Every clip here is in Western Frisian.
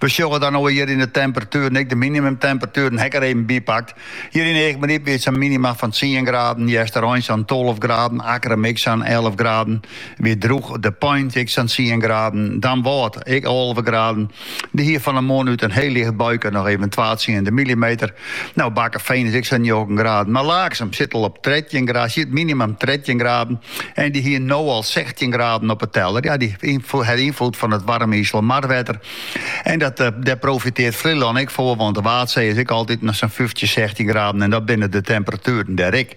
We sjogge dan no hjir yn de temperatueren ek de minimumtemperatueren ha 'k der even by pakt. Hjir yn Eagmaryp wie it sa'n minima fan tsien graden, Easterein sa'n tolve graden, Akkrum ek sa'n elve graden. Wie drûch, De Pein ek sa'n tsien graden, Damwâld ek alve graden. Dy hie fan 'e moarn út in hiel licht buike noch even twa tsiende millimeter Nou, Bakkefean is ek sa'n njoggen graden, mar Laaksum sit al op trettjin graden, siet minimum trettjin graden. En dy hie no al sechstjin graden op 'e teller. Ja, dy hat ynfloed fan it waarme Iselmarwetter. En dat, eh, dêr profiteart Flylân ek foar, want de Waadsee is ek altyd sa'n fyftjin, sechstjin graden en dat binne de temperatueren dêr ek.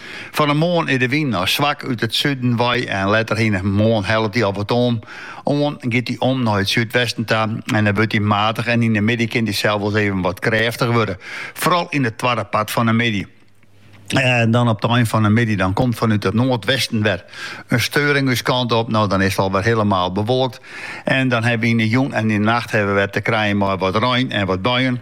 Fan 'e moarn is de wyn noch swak út it suden wei en letter yn de moarn hellet dy al wat om, oan, giet dy om nei it súdwesten ta en dan wurdt dy matig en yn 'e middei kin dy sels even wat krêftich wurde, foaral yn it twadde part fan 'e middei. En dan op it ein fan 'e middei dan komt fanút it noardwesten wer in steuring ús kant op. No dan is it alwer hielemaal bewolkt en dan hawwe wy yn 'e jûn en yn 'e nacht hawwe we wer te krijen mei wat rein en wat buien.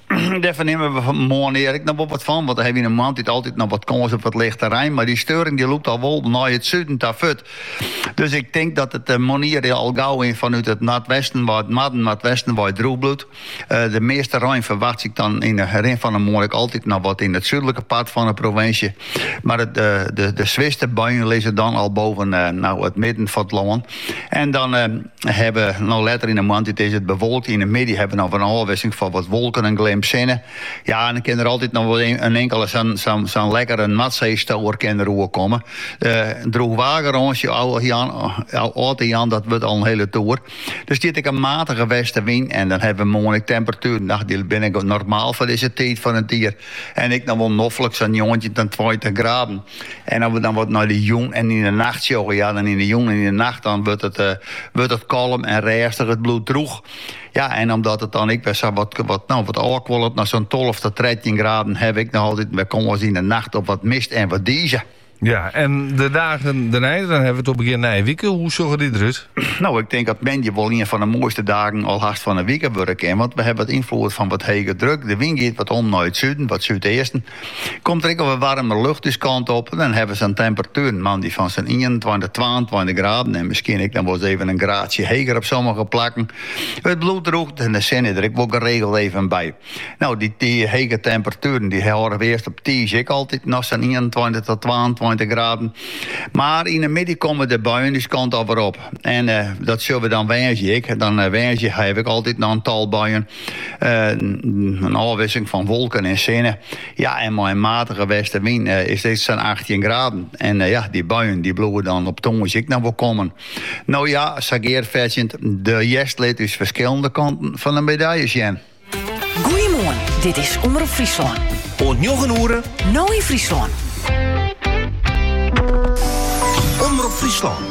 Dêr fernimme we moarnier ek noch wol wat fan, want dan hawwe we yn 'e moarntiid altyd noch wat kâns op wat lichte rein, mar dy steuring dy lûkt al wol nei it suden ta furt. Dus ik tink dat it moarnier al gau yn fanút it noardwesten wei it noarden, noardwesten wei drûch bliuwt. De measte rein ferwachtsje ik dan yn 'e rin fan 'e moarn ek altyd noch wat yn it súdlike part fan 'e provinsje, mar de swierste buien lizze dan al boven it midden fan it lân. En dan Hawwe we no letter yn de moarntiid is it bewolkt. Yn de middei hawwe we noch in ôfwisseling fan wat wolken en in glim sinne. Ja, en dan kin der altyd noch wol in inkele sa'n lekkere Noardseestower kin der oerkomme. Droechwaargarânsje ôf te jaan, dat wurdt al in hiele toer. Der stiet ek in matige westenwyn en dan hawwe we moarn ek temperatueren, ach, dy binne normaal foar dizze tiid fan it jier en ek noch wol noflik sa'n njoggentjin ta tweintich graden. En as we dan wat nei de jûn en yn de nacht sjogge, ja, dan yn de jûn en yn de nacht dan wurdt it, eh, wurdt it kalm en rêstich, it bliuwt drûch. Ja, en omdat it dan ek wer sa wat, wat, no, wat ôfkuolet nei sa'n tolve ta trettjin graden, hawwe we ek noch altyd wer kâns yn de nacht op wat mist en wat dize. Ja, en de dagen dêrnei, dan hawwe we it op begjin nije wike. Hoe sjogge dy derút? No, ik tink dat moandei wol ien fan de moaiste dagen al hast fan de wike wurde kin. Want we hawwe wat ynfloed fan wat hege druk. De wyn giet wat om nei it suden, wat súdeasten. Komt der ek al wat waarmer lucht ús kant op, dan hawwe we in temperatuer moandei fan sa'n ienentweintich, twaentweintich graden en miskien ek noch wol ris even in graadsje heger op sommige plakken. It bliuwt drûch en de sinne der ek wol geregeld even by. No, dy hege temperatueren dy hâlde we earst op tiisdei ek altyd noch sa'n ienentweintich tot twaentweintich graden. Mar yn 'e middei komme de buien ús kant al wer op en dat sjogge we dan woansdei ek. Dan woansdei hawwe we ek altyd noch in tal buien. in ôfwisseling fan wolken en sinne. Ja, en mei een matige westenwyn eh, is it sa'n 18 graden. En eh, ja, dy buien dy bliuwe dan op tongersdei ek noch wol kommen. Nou ja, sa gearfetsjend, de hjerst lit ús ferskillende kanten fan de medalje sjen. Goeiemoarn, dit is Omrop Fryslân. Oant njoggen oere. No yn Fryslân. Omrop Fryslân.